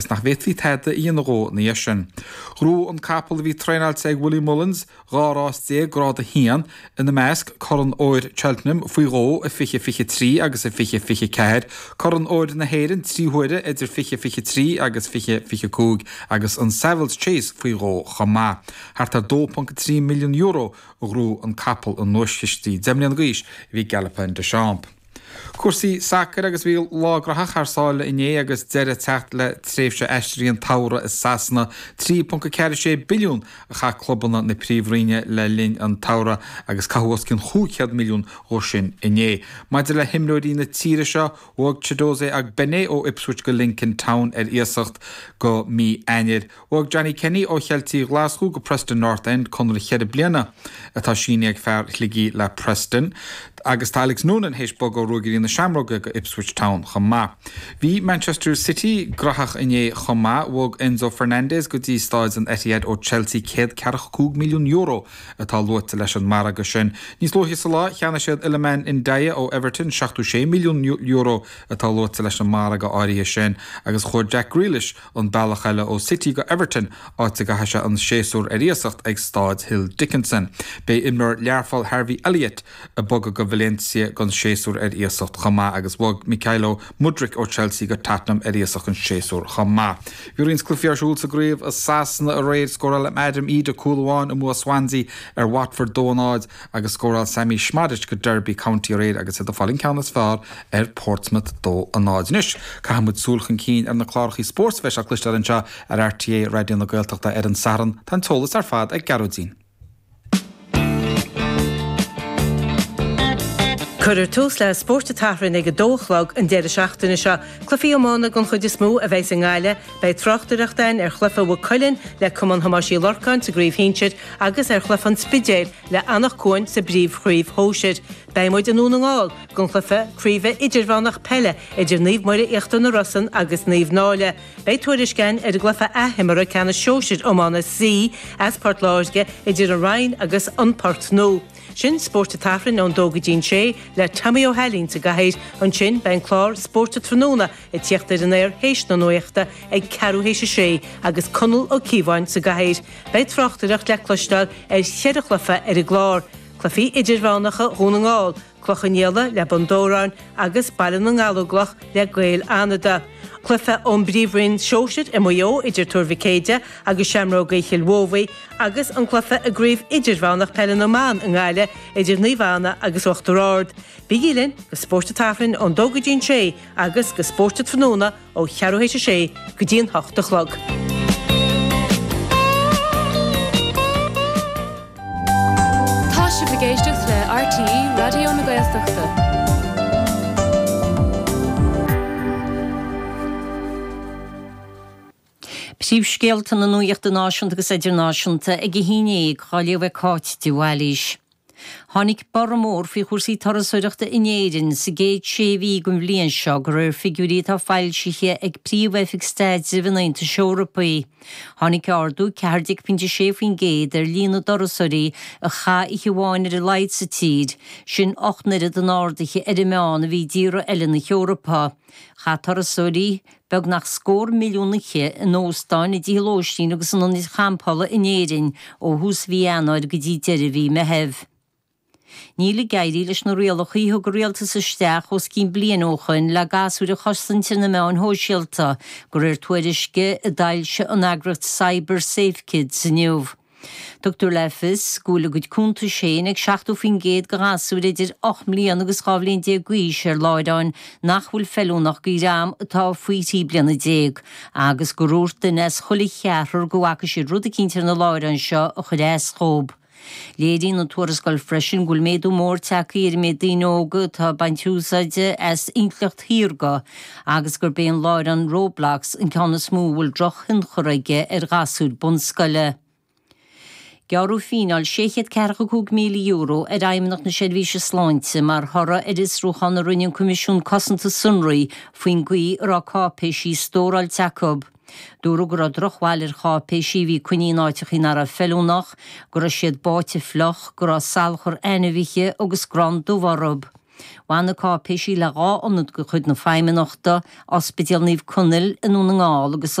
'S nach bhféadfaí tada a dhéanamh dhó ina dhiaidh sin. Ghnóthaigh an capall a bhí traenáilte ag Willie Mullins dhá rás déag Grád 1, ina measc, Corn Óir Cheltenham faoi dhó i 20, 23 agus i 20, 24, Corn Óir na hÉireann trí huaire idir 20, 23 agus 20, 25 agus an Savills Chase faoi dhó chomh maith. Thart ar €2.3 milliún a ghnóthaigh an capall i nduaischistí deich mbliana d'aois a bhí Galopin Des Champs. Cúrsaí sacair agus bhí lá graitheach thar sáile inné agus deireadh ag teacht le tréimhse aistrithe an tsamhraidh i Sasana. 3.46 billiún a chaith clubanna na Príomh-Roinne le linn an tsamhraidh agus caitheadh os cionn chúig chéad milliún dhó sin inné. Maidir le himreoirí na tíre seo, bhog Chiedozie Ogbene ó Ipswich go Lincoln Town ar iasacht go mí Eanáir. Bhog Johnny Kenny ó Cheiltigh Ghlaschú go Preston North End conradh ceithre bliana, atá sínithe ag fear Shligigh le Preston, agus tá Alex Noonan théis bogadh ó Ruagairí na Seamróige go Ipswich Town chomh maith. Bhí Manchester City graitheach inné chomh maith, bhog Enzo Fernandez go dtí Staid an Etihad ó Chelsea céad ceathracha cúig milliún euro atá luaite leis an margadh sin. Níos luaithe sa lá, cheannaigh siad Iliman Ndiaye ó Everton seachtó sé milliún euro atá luaite leis an margadh áirithe sin agus chuaigh Jack Grealish an bealach eile ó City go Everton, áit a gcaithfidh sé an séasúr ar iasacht ag Staid Hill Dickinson. Beidh imreoir Learpholl Harvey Elliott ag bogadh go Valencia don séasúr ar iasacht chomh maith agus bhog Mykhailo Mudryk ó Chelsea go Tottenham ar iasacht an séasúr chomh maith. Bhí roinnt cluichí ar siúl sa gcraobh i Sasana aréir. Scóráil Adam Idah cúl amháin i mbua Swansea ar Watford 2-0 agus scóráil Sammy Szmodics do Derby County aréir agus iad ag fáil an ceann is fearr ar Portsmouth 2-0. Anois, caithfidh muid súil chun cinn ar na clárachaí spóirt a bheas le cloisteáil anseo ar RTÉ Raidió na Gaeltachta ar an Satharn, tá an t-eolas ar fad ag Gearóidín. Cuirfear tús le Spórt an tSathairn ag a dó a chlog an deireadh seachtaine seo. Cluichí iomána den chuid is mó a bheas i nGaillimh, Beidh tráchtaireacht ann ar chluiche Mhaigh Cuilinn le Cumann Thomáis Uí Lorcáin sa gcraobh shinsir agus ar chluiche an Spidéil le Anach Cuain sa bpríomhchraobh shóisir. Beidh muid i nDún na nGall don chluiche craoibhe idirmheánach peile idir Naomh Muire Íochtar na Rosann agus Naomh Náille. Beidh tuairisc ann ar an gcluiche athimeartha ceannais shóisir iomána C as Port Láirge idir An Rinn agus An Port Mór sin Spórt an tSathairn ón dó go dtí'n sé le Tommy Ó hAilín sa gcathaoir. Ansin beidh an clár Spórt an Tráthnóna Ag tíocht ar an aer théis na nuachta ag ceathrú théis a sé agus Conall Ó Cíobháin sa gcathaoir, beidh tráchtaireacht le cloisteáil ar cheithre chluiche ar an gclár, cluichí idirmheánacha Dhún na nGall, Cloich Cheann Fhaola le Bun Dobhráin agus Baile na nGallóglach le Gaeil Fhánada, cluiche ón bPríomhroinn Shóisir i Maigh Eo idir Tuar Mhic Éadaigh agus Seamróga Chill Mobhí agus an cluiche i gCraobh Idirmheánach Peile na mBan i nGaillimh idir Naomh Anna agus Uachtar Ard. Bígí linn do Spórt an tSathairn ón dó go dtí an sé agus go spóirt tráthnóna ó cheathrú théis a sé go dtí an hocht a chlog. Tá sibh ag éisteacht le RTÉ Raidió na Gaeltachta. Príomhscéalta na Nuachta Náisiúnta agus Idirnáisiúnta ag a haon déag, á léamh ag Cáit de Bhailís. Tháinig borradh mór faoi chúrsaí turasóireachta in Éirinn sa gcéad sé mhí den bhliain seo de réir figiúirí atá foilsithe ag Príomh-Oifig Staidrimh an Aontais Eorpaigh. Tháinig ardú 14.6% ar líon na dturasóirí a chaith oíche amháin ar a laghad sa tír, sin ocht n-oiread an ardaithe ar an meán a bhí i dtíortha eile na hEorpa. Chaith turasóirí. beagnach scór milliún oíche in óstáin, i dtithe lóistín agus in ionaid champála in Éirinn ó thús mhí Eanáir go dtí deireadh mhí Meitheamh. Níl ag éirí leis na rialacha a thug an rialtas isteach os cionn bliain ó shoin le gasúir a chosaint ar na meáin shóisialta, de réir tuairisce a d'fhoilsigh an eagraíocht CyberSafeKids inniu. Tugtar le fios go bhfuil a gcuid cuntais féin ag 70% de ghasúir idir ocht mbliana agus dhá bhliain déag d'aois ar láithreáin nach bhfuil feiliúnach do dhream atá faoi thrí bliana déag agus gur dhúirt duine as chuile cheathrar go bhfaca siad rud eicínt ar na láithreáin seo a chuir as dhóibh. Léiríonn an tuarascáil freisin go bhfuil méadú mór tagtha ar an méid daoine óga atá ag baint úsáide as intleacht shaorga, agus gurb é an láithreán Roblox an ceann is mó a bhfuil drochthionchar aige ar ghasúir bunscoile. Gearradh fíneáil €645,000 ar Fheidhmeannacht na Seirbhíse Sláinte mar thoradh ar fhiosrúchán a rinne an Coimisiún Cosanta Sonraí faoin gcaoi a raibh cáipéisí stóráilte acu. Dúradh go raibh drochbhail ar cháipéisí a bhí coinnithe in áiteachaí nach raibh feiliúnach, go raibh siad báite fliuch, go raibh salachar ainmhithe agus grán dubh orthu. Bhain na cáipéisí le dhá ionad de chuid na Feidhmeannachta, Ospidéal Naomh Conaill i nDún na nGall agus.